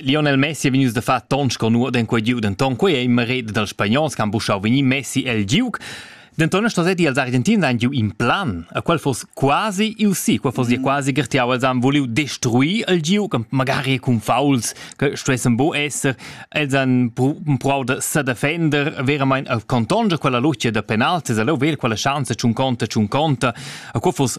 Lionel Messi è vegnius da far tons con nuot en quei giug, denton quei ei in mared dals spagnons che han buschau vegnir Messi el giug. Denton stasetti els Argentins han giu in plan, a qual foss quasi il sì, qual foss mm. quasi gertiau, els han vuliu destruir el giug, magari cun fauls che stuessen bo esser, els han provau da sedefender veramente a contonscher quella luce da penalti, se lo vel quella chance tschun conta, tschun conta, a qual foss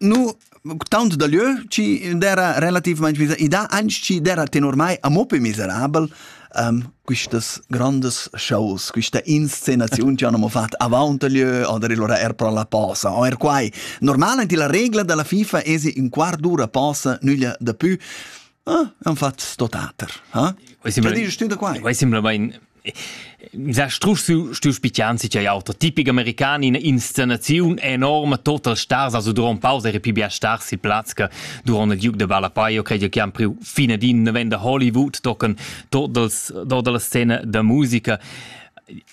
nu taunt da lö chi d'era relativmaing miser i dà anch chi d'era tenor mai amo pe miserabel um, quistas grandes shows, quista inscenaziun che hanno fatto avanti lö oder allora er pro la posa o er quai normalmente la regla della FIFA es un quart d'ura posa nüglia da pü Ah, han fatto sto teater. Ha? Quai sembra da quai. Quai sembra bain Sa strusch stu spitian si chai auter tipic american in inscenaziun enorma total stars a durant pausa era pli bia stars sil plaz che durant il Duke de Balapaio credo che han priu fine din novenda Hollywood tocken totals tota la scena da musica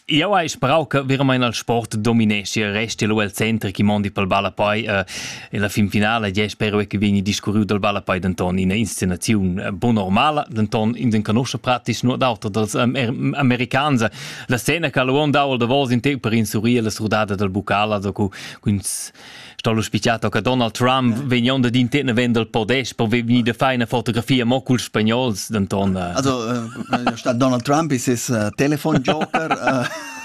Io hai sparau che veramente il sport dominesce e resti lu el centri chi mondi pel balla poi uh, E la finfinala è spero che vegni discurriu dal Ballapei denton ina inscenaziun eh, bon normala, denton in den conosce pratis nur d'auter dals um, americans. La scena che l'uon dau da vos in te per insurir la surdada dal bucala da cu stollo spicciato che Donald Trump vegn onda din te vend dal podest per vegni da fare una fotografia mo cul spagnols denton. Eh. Also eh, sta Donald Trump ist es telefon Joker.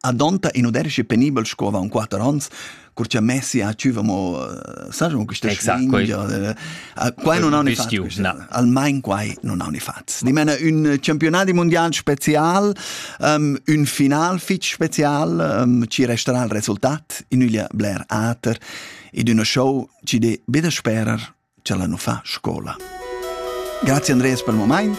Adonta in uderschi penibel sco avon quater onns, cur cha Messi ha tschüva mo eh, sai mo questa Exact, slingia quei- quai non ha un bistiu, fatg no. almain quai non ha un fatg di mena un campionati mondial special um, un final fitg special um, ci resterà il resultat in üglia bler ater ed una show ci de beda sperer ce la nu fa scola Grazie Andreas per il moment